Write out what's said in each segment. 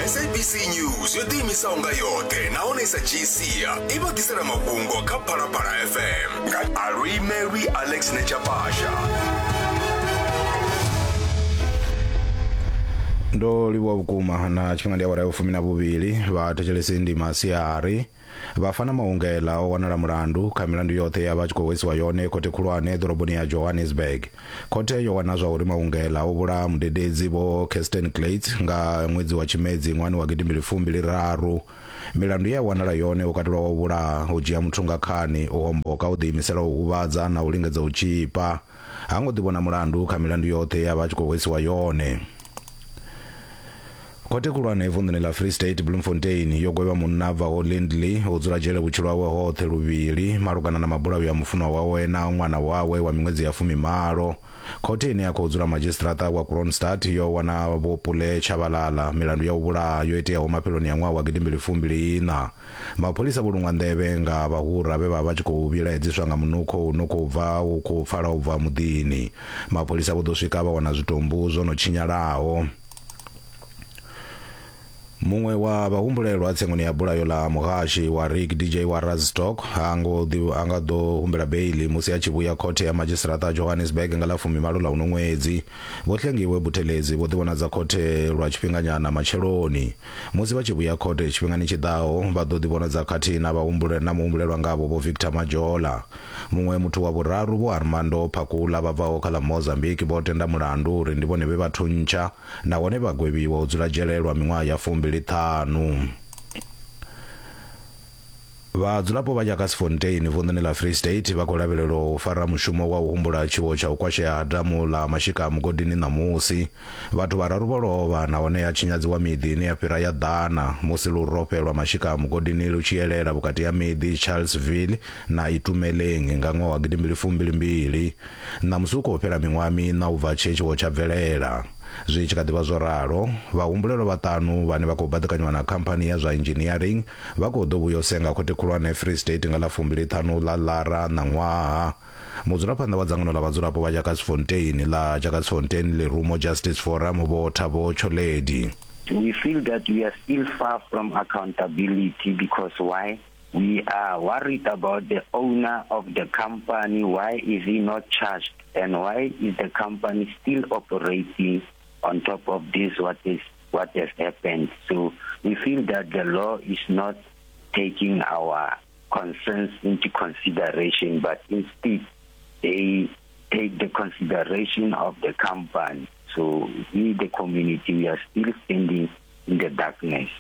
sabc news yo ḓiimisaho nga yoṱhe nahone sa gcia i vha ḓisela mafhungo kha phalaphala fm nga alwi mary alex nechapasha ndo livhuwa vhukuma na tshifhinga ndi awara ya vhufumi na vhuvhili vha thetshelesi ndi masiari Vhafana Mahungela o wanala mulandu kha milandu yoṱhe ye a vha a tshi khou hwesiwa yone khothe khulwane ḓoroboni ya Johannesburg. Khothe yo wana zwa uri Mahungela o vhulaha mudededzi Vho Kirsten Klate nga ṅwedzi wa Tshimedzi ṅwahani wa gidimbili fumbili raru. Milandu ye a wanala yone ho katelwa wa u vhulaha, u dzhia muthu nga khani, u homboka, u ḓiimisela u huvhadza na u lingedza u tzhipa. ha ngo ḓivhona mulandu kha milandu yoṱhe ya vha tshi khou hwesiwa yone. Khothe khulwane vunḓuni ḽa Free State Bloemfontein yo gwevha munna bvaho Lindley u dzula dzhele vhutshilo hawe hoṱhe luvhili malugana na mabulayo ya mufunwa wawe na ṅwana wawe wa miṅwedzi ya fumimalo. Khothe ine ya khou dzula madzhisiṱiraṱa wa Kroonstad yo wana Vho Pule Tshabalala milandu ya u vhulaha yo iteaho mafheloni a ṅwaha wa gidimbili fumbiliiṋa. Mapholisa vho luṅwa nḓevhe nga vhahura vhe vha vha tshi khou vhilaedziswa nga munukho u no khou bva u khou pfala u bva muḓini. Mapholisa vho ḓo swika vha wana zwitumbu zwo no tshinyalaho. Muṅwe wa vhahumbulelwa tsengoni ya bulayo ḽa muhashi wa Rig DJ wa Razstock ha ngo a nga ḓo humbela beili musi a tshi vhuya khothe ya madzhisiṱaraṱa Johannesburg nga ḽa fumimalo ḽa uno ṅwedzi. Vho Hlengiwe Buthelezi vho ḓivhonadza khothe lwa tshifhinganyana matsheloni. Musi vha tshi vhuya court tshifhingani tshi ḓaho, vha ḓo ḓivhonadza khathihi na vhahumbule na muhumbulelwa ngavho Vho Victor Majola. Muṅwe muthu wa vhuraru Vho Armando Phakula vha bvaho kha ḽa Mozambique vho tenda mulandu uri ndi vhone vhe vha thuntsha nahone vha gwevhiwa u dzula dzhele lwa miṅwaha ya fumbili ṱhanu. Vhadzulapo vha Jagersfontein vunḓuni ḽa Free State vha khou lavhelelwa u fara mushumo wa u humbula tshiwo tsha u kwashea ha damu ḽa Mashika Mugodini ṋamusi. Vhathu vhararu vho lovha nahone ha tshinyadziwa miḓi ine ya fhira ya ḓana musi lurofhe lwa Mashika Mugodini lu tshi elela vhukati ha miḓi Charlesville na Itumeleng nga ṅwaha wa gidimbili fumbili mbili. Ṋamusi hu khou fhela miṅwaha miṋa u bva tshe tshiwo tsha bvelela. Zwi tshi kha ḓi vha zwo ralo, vhahumbulelwa vhaṱanu vhane vha khou baḓekanywa na khamphani ya zwa inzhiniering Vha khou ḓo vhuya u senga Khothe Khulwane ya Free State nga ḽa fumbili-ṱhanu ḽa Lara ṋaṅwaha. Mudzulaphanḓa wa dzangano ḽa vhadzulapo vha Jakasfontein ḽa Jakasfontein Lerumo Justice Forum Vho Thabo Tsholedi. We feel that we are still far from accountability because why? We are worried about the owner of the company, why is he not charged and why is the company still operating on top of this what is what has happened. So we feel that the law is not taking our concerns into consideration, but instead they take the consideration of the company. So we, the community, we are still standing in the darkness.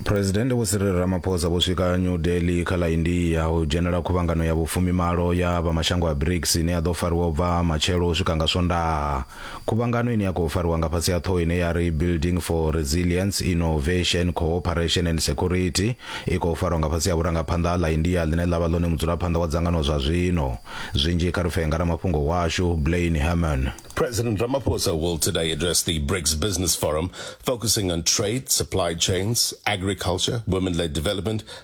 phuresidennde vho sirili ramaphosa vho swika new delhi kha ḽa india u dzhenela khuvhangano ya vhufumimalo ya vha mashango a brics ine ya ḓo fariwa u bva matshelo u swika nga swondaha Khuvhangano ine ya khou fariwa nga fhasi ha ṱhoho ine ya ri Building for Resilience, Innovation, Cooperation and Security i khou farwa nga fhasi ha vhurangaphanḓa ha ḽa India ḽine ḽa vha ḽone mudzulaphanḓa wa dzangano zwa zwino. Zwinzhi kha ri pfee nga ramafhungo washu, Blaine Herman. President Ramaphosa will today address the BRICS Business Forum, focusing on trade, supply chains, agriculture, women-led development,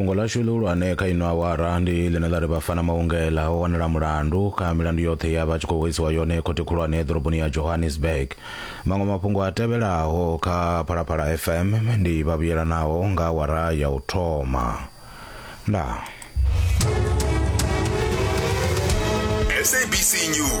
fhungo ḽashu ḽihulwane kha ino awara ndi ḽine ḽa ri vhafana maungela o wanela mulandu kha milandu yoṱhe ya vha tshi khou hoisiwa yone khothe khulwane ḓoroboni ya johannesburg maṅwe mafhungo a tevhelaho kha phalaphala fm ndi vhavhuyelanaho nga awara ya u thoma ndaa sabc news